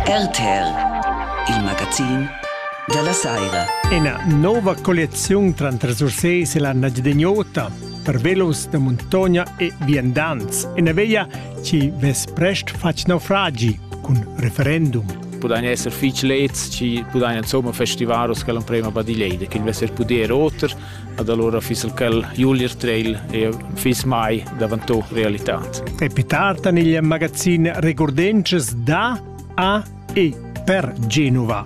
RTL, il magazin della Saira. Ina nova colliazione tra Sursés e la Najdeniota per velos da montagna e viandants, una via ci ves prest fac naufragi con referendum. Pudain esser fich leds, ci pudain insomma festivaros che l'emprema badileide, che il vesser puder oter, Ed alura fiss il quel Julius Treil eir fiss mai davantò realitad. E pi tard en il magazin Regurdences da a e per Genova.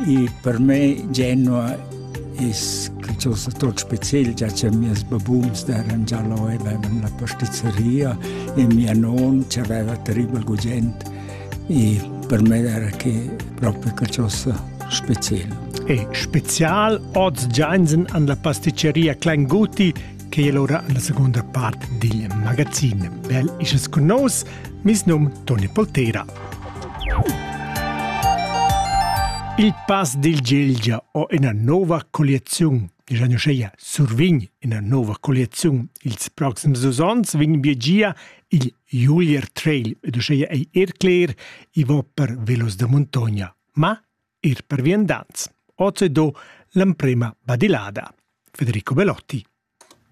E per me Genova es qualcosa tot spezial, già che mias babuns d'eran già là e avevan la pasticceria e mia non che aveva terribel gugent e per me era che propi qualcosa special. E special oz Giansen an la pasticceria Kleinguti che è ora alla seconda parte dil magazin. Bel isches con nos, mis num Toni Poltera. Il pass dil Gelgia ho ina nova colliaziun. Digiano Scheia survign ina nova colliaziun. Ils proxims dus onns vegn Biegia il Julier Trail ed uscheia ei er cler, i va per velos da muntogna, ma er per viandants. Oz è do l'emprema badilada. Federico Belotti.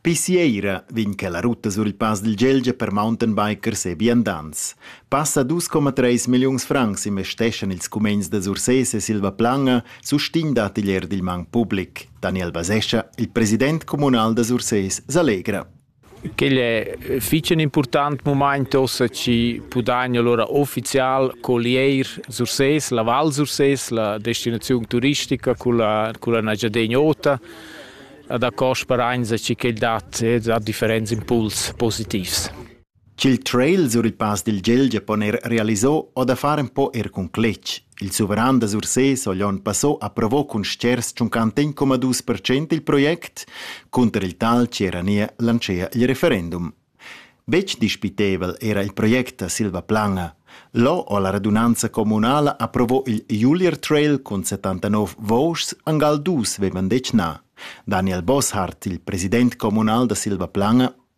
Pi sieira vegn che la rutta sur il pass dil Gelgia per mountainbikers e viandants. Passa 2,3 milliuns francs investeschan ils cumegns da Sursés e Silva Planga, sustign d'atelier dil mang public. Daniel Basescha, il president communal da Sursés, s'allegra. Quel è fich ün important mumaint uossa chi pudagna lura uffizial collier Sursés, la Val Sursés, la destinaziun turistica culla culla Engiadina Ota. A da cò sperainsa chi quel dat dat differents impuls positivs. ch'il trail sur il Pass dil Gelgia pon er realisar o da far empau er cun cletg. Il suveran da Sursés ha l'onn passà approvò cun stgers tschuncanten coma dus per cent il project, cunter il tal che era nia lancea il referendum. Betg dispitevel era il project da Silva Planga. Lo ho la radunanza communala approvò il Julier Trail cun 79 vouschs angal dus vevan detg na. Daniel Bosshardt, il president communal da Silva Planga,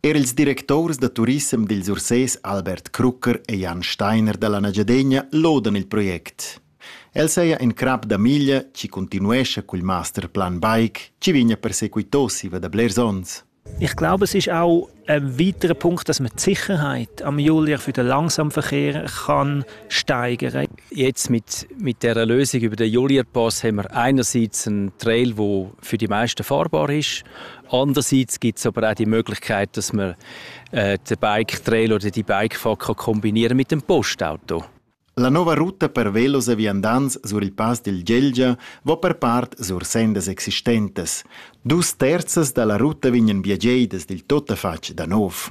Er ils directurs da turissem dils Ursés Albert Krucker e Jan Steiner dalla Nagiadegna lodan il project. El seia in crap da miglia chi continuescha cul masterplan bike chi vigna persequitò siva da blers ons. Ich glaube, es ist auch ein weiterer Punkt, dass man die Sicherheit am Julia für den Langsamverkehr kann steigern Jetzt mit, mit der Lösung über den Julia-Pass haben wir einerseits einen Trail, der für die meisten fahrbar ist, Andererseits gibt es aber auch die Möglichkeit, dass man äh, den Bike-Trailer oder die Bikefahrt kann kombinieren mit dem Postauto. La nuova ruta per velos e viandants sur il Pass del Gelgia va per part sur sendas existentes. Dus terzas da la ruta vegnan biagieidas dil tuttafatg da nov.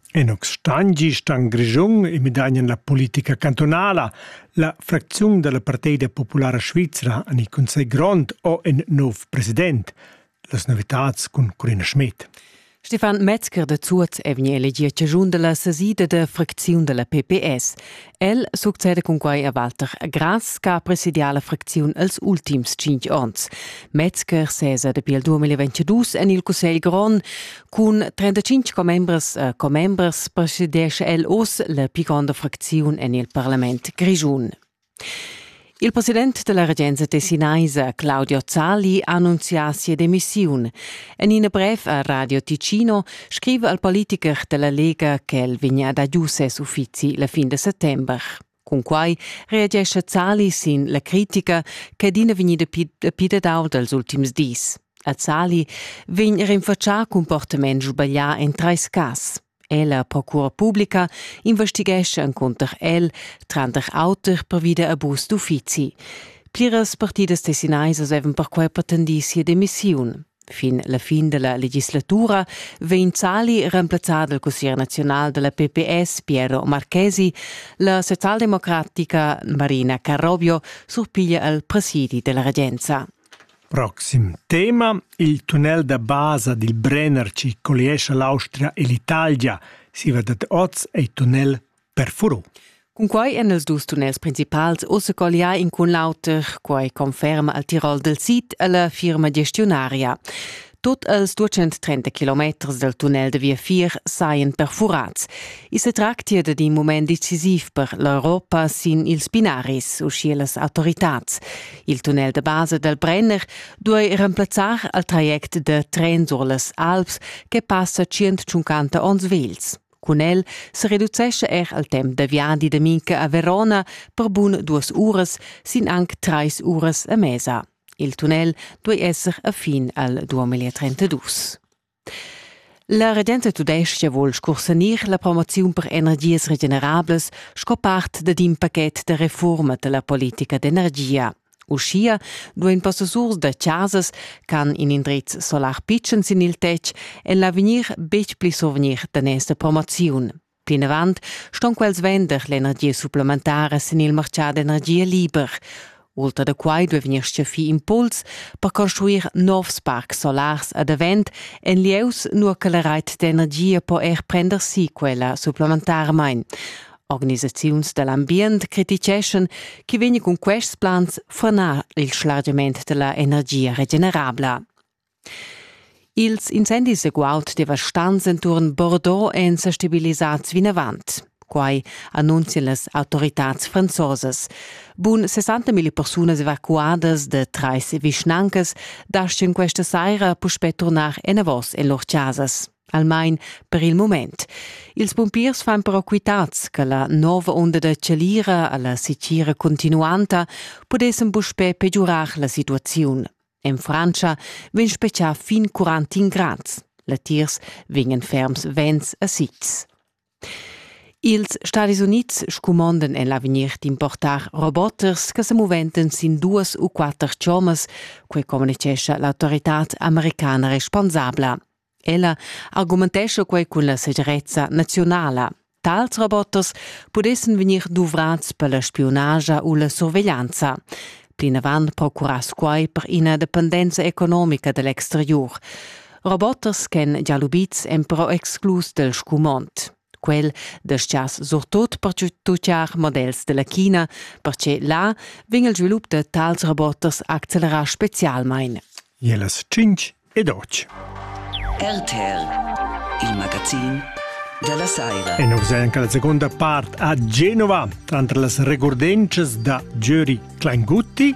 En Oxtangi stan Grischun e midagnan la politica cantunala. La fracziun dalla Partida populara svizra en il Cussegl grond o in nov president. Las novitads cun Corina Schmidt. Stefan Metzger de Zuoz è vegni elegì a ciascun della sesida da fracziun della PPS. El succeda cun quai a Walter Grass che ha presidià la fracziun els ultims cinq onns. Metzger sesa dapi il 2022 en il Cussegl grond. Cun 35 commembres e commembres presidescha el oz la pi gronda fracziun en il parlament grischun. Il president della regenza tessinaisa Claudio Zalli ha annunzià sia demissiun. En in brev a Radio Ticino scrive al politiker della Lega che el vegna da giu ses uffizi la fin de settember. Cunquai reagesce Zalli sin la critica che adina vegnida pidedau dals ultims dis. A Zalli vegn rinfaccià cumportament sbaglià en treis cas. Ella procura publica investighescha encunter el, tranter auter pervi da abus d'uffizi. Pliras partidas tessinaisas avevan perquai pretendì sia demissiun. Fin la fin della legislatura vegn Zali remplazzà dal consiglier nazional della PPS Piero Marchesi, la socialdemocratica Marina Carrobio surpiglia al presidi della regenza. Proxim tema: il tunnel da basa dil Brenner chi colliescha l'Austria e l'Italia. Siva dad oz ei tunnel perfuro. Cunquei ein els dus tunnels principals ussa colliai in cun l'auter, quei conferma al Tirol del Sid e la firma gestiunaria. Tut els 230 kilometers dal tunnel da viafier sajan perfurats. I se tractia dad in mument decisiv per l'Europa sin ils binaris, uschia las autoritads. Il tunnel da basa dal Brenner duai remplazzar al traject da tren sur las Alps che passa 150 onns vels. Cun el se reducesce er al temp da viadi da Minca a Verona per bun duas uras sin anc trais uras a mesa. Il tunnel duei esser a fin al 2032. La regenta tudestga vul scursanir la promoziun per energias regenerablas sco part dad in pachet da reforma dalla politica d'energia. Uschia duein possessurs da chasas ch'han in indriz solar pitschen sin il tetg en l'avegnir betg pli survegnir da nesta promoziun. Plinavant ston quels vender l'energia supplementara sin il martgà d'energia liber. Ultra da quai duai vegnir stgaffì impuls per construir novs parcs solars ad avent en lieus, nua che la rait d'energia po er prender si quella supplementarmain. Organisaziuns da l'ambient criticeschan che vegni cun quests plans franar il schlargiament da la energia regenerabla. Ils incendis e guaud devastants enturn Bordeaux èn sa stabilisads vinavant. Quai annunzian las autoritads franzosas. Bun 60.000 persunas evacuadas da trais vischnancas dastgan questa saira puspè turnar enavos en lur chasas almain per il mument. Ils pumpiers fan però quitads che la nova onda da chalira alla sicira continuanta pudessan puspè pegiurar la situaziun. En Frantscha vegn spetgà fin 41 grads. Latiers vegnan ferms vents a sitgs. Ils Stadis Unids scumondan en l'avegnir d'importar roboters che se moventen sin duas u quatter chommas, quei communicescha l'autoritad americana responsabla. Ella argumentescha quei cun la segirezza naziunala. Tals robots pudessen vegnir duvrats per la spiunagia u la surveglianza. Plinavant procurass quai per ina dependenza economica dell'exterior. Robots ch'en già lubids en però exclus del scumond. Quel dastgias surtot pertucciar models della China, perche là vegn il svilup de tals roboters accelerà specialmein. E las 5 ed oggi. RTL, il magazin della Saira. E noi siamo la seconda parte a Genova, tra las regordences da Giuri Clangutti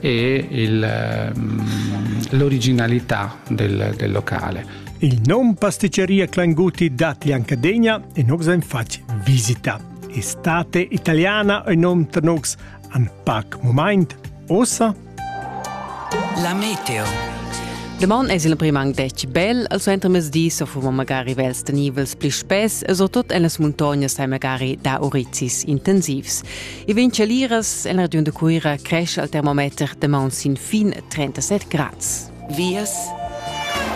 e il, ehm, l'originalità del, del locale. Il nom pasticceria Clanguti dat Liancadegna e nos en fac visita. Estate italiana e nom trnox an pac moment, ossa? La meteo. Deman es il primang dec bel al suenter mesdis o fuma magari vels tenivels pli spess e so tot en las muntognas sai magari da orizis intensivs. E vegn chaliras en regiun da Cuira cresce al termometer da maun sin fin 37 grads. Vias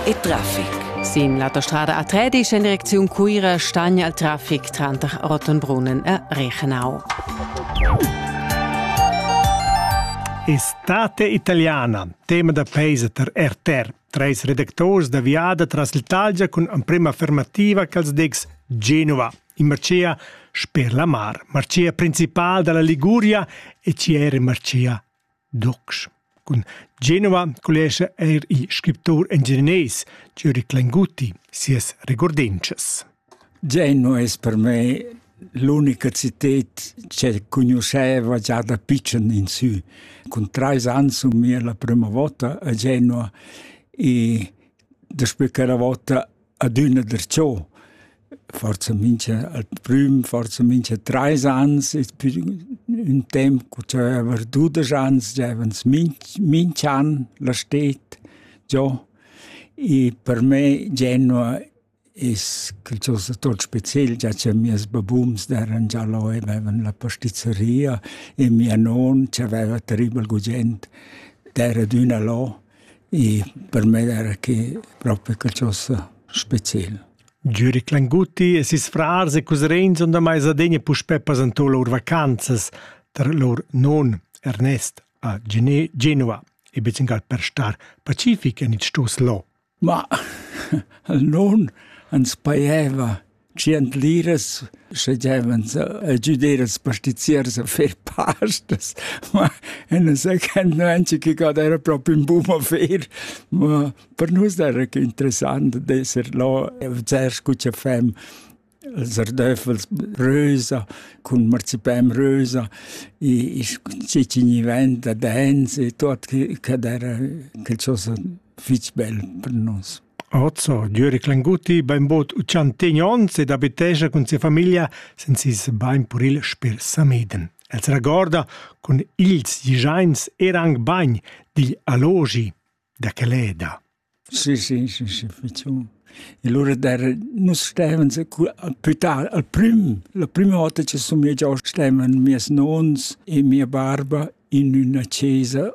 e traffic. Sin l'autostrada A13 en direcziun Cuira stagna il traffic tranter Rottenbrunnen e Reichenau. Estate italiana, tema da peisa per RTR. Treis redactors da viada tras l'Italia cun emprema affermativa che els degs Genova. in marcia sper la mar, marcia principal dalla Liguria e ci era marcia Docs. Cun Genova collega er il scriptor engineers Juric Lenguti sias regordinces. Genova è per me l'unica città che conosceva già da piccen in su. Con tre anni su mia la prima volta a Genova e després quella volta adüna darcho forsa mincha al prüm forsa mincha trais ans es pü ün temp co giaiva er dudesch ans giaivans minch minch an la sted giò e per me Genua es qualchosa tuot speciel già cha mieus babums d'eran già là e vaivan la pastizzeria e mia non c'aveva terribel gugent d'era adüna là e per me era che propi qualcosa special. Giuri Clanguti e ses frars e cusrins on da maisadegna puspè pasantò lur vacanzas tar lur non Ernest a Genova e becengal per star pacific en il stos lo. Ma il non ans paieva tschientliras sche giavens a giuder als pastiziers a fer pastas ma en un second no anche che god era proprio in buon affair ma per nus era che interessant d'esser là e zuerst cu cha fem els ardöffels rösa cun marzipan rösa e cicigni vent da dance e tuot che dat era qualchosa fich bel per nus. Ozzo, Jöri Clanguti, bainbod uchantegn ons ed abitescha cun sia famiglia sen sis bain puril sper Sameden. El s'ragorda cun ils giains er anc bagn digl allogi da Caleda. Sì, sì, sì, sì, facciamo. E allora der, nus stevens più tardi, al prim, la prima volta che sono già stevano miei nons e mia barba in una chiesa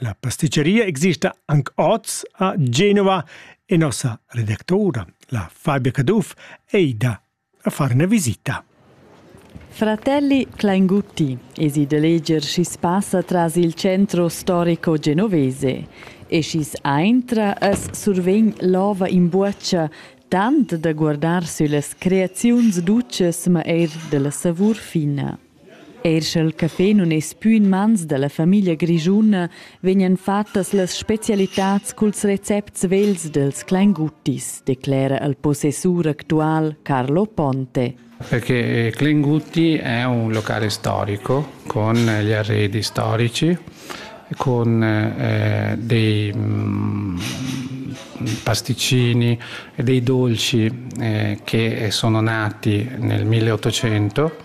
La pasticceria exista anc oz a Genova e nossa redactora, la Fabia Caduff, è ida a far una visita. Fratelli Klaingutti esi de leger schi's passa tras il centro storico genovese e schi's aintra as survegn l'ova in buoccia tant da guardar süllas creaziuns duces ma eir della savur fina. Eir scha'l café nun es pü in mans da la famiglia grischuna, vegnan fattas las specialitats culs recepts vels dels Kleinguttis, declera il possessur actual Carlo Ponte. Perché Klingutti è un locale storico con gli arredi storici, con eh, dei mm, pasticcini e dei dolci eh, che sono nati nel 1800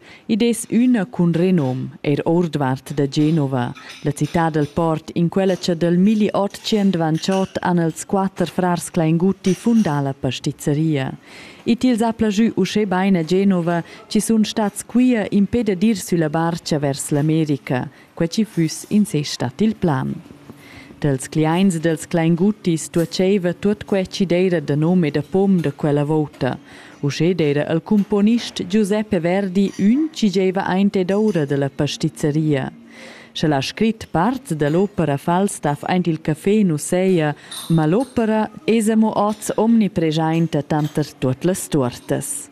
Id es üna cun renom, eir ourdvart da Genova, la cità dal port in quella cha dal milli otg dvantschot han els quatter frars Klainguti fundà la pastizzeria. I tils ha plajü uschè bain a Genova chi sun stats quia impè dad ir sülla barcha vers l'America, quei chi füss in se stat il plan. Dels cliaints e dels clainguttis tuoceva tuot quai chi d'eira da nom e da pom da quella vouta, uschè d'eira il cumponist Giuseppe Verdi ün chi gieva aint ed oura da la pastizzeria. Sch'el ha scrit parts da l'opera Falstaff aint il café nu seja, ma l'opera esa mo hoz omnipreschainta tanter tuot las tuortas.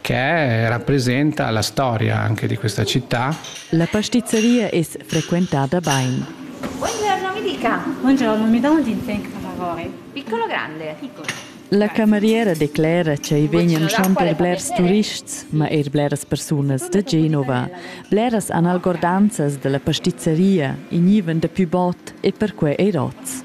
che rappresenta la storia anche di questa città. La pastizzeria es frequentada bain. Buongiorno mi dica. Buongiorno, mi do un dinfen lavori. Piccolo o grande? Piccolo. La cameriera declera che i vegnan schon per blers turists, ma er bleras persunas da Genova. Bleras han algordanzas della pastizzeria, i nivan da pü bot e perquei ei rots.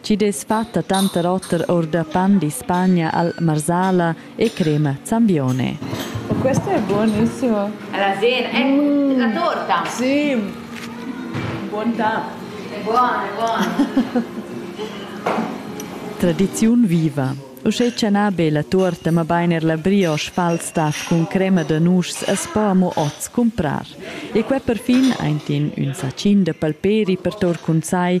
Chi dess fatta tanter oter our da pan d'Ispagna al Marsala e crema Zambione. Questo è buonissimo. È la sera, è mm. la torta. Sì, buon'tà. È buono, è buono. Tradiziun viva. Uschè chanà be la tuorta, ma bainer la brioche Falstaff cun crema da nuschs as po amo oz cumprar. E quai perfin aint in ün sacin da palperi per tor cun sai,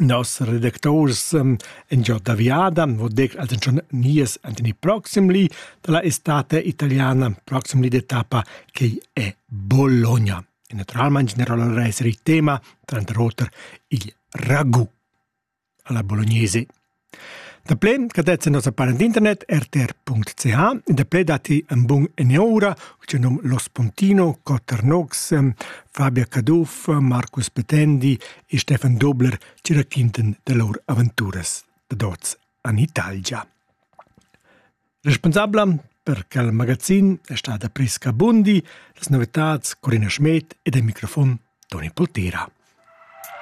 Nos redacturs in giò da viada vo dir als inchün nies Antoni Proximly da la estate italiana, Proximly d'etappa chi è Bologna. E natüralmaing generalment es il tema, tranter oter, il ragù alla bolognese. Da plen cadetza nossa para d'internet rtr.ch e da ple dati un bun eniora, uce num Los Pontino, Cotter Nox, Fabia Caduff, Marcus Petendi e Stefan Dobler ci raquinten de lor aventuras da dots an Italgia. Responsabla per quel magazin è stata Prisca Bundi, las novitats Corina Schmidt e del microfon Toni Poltera.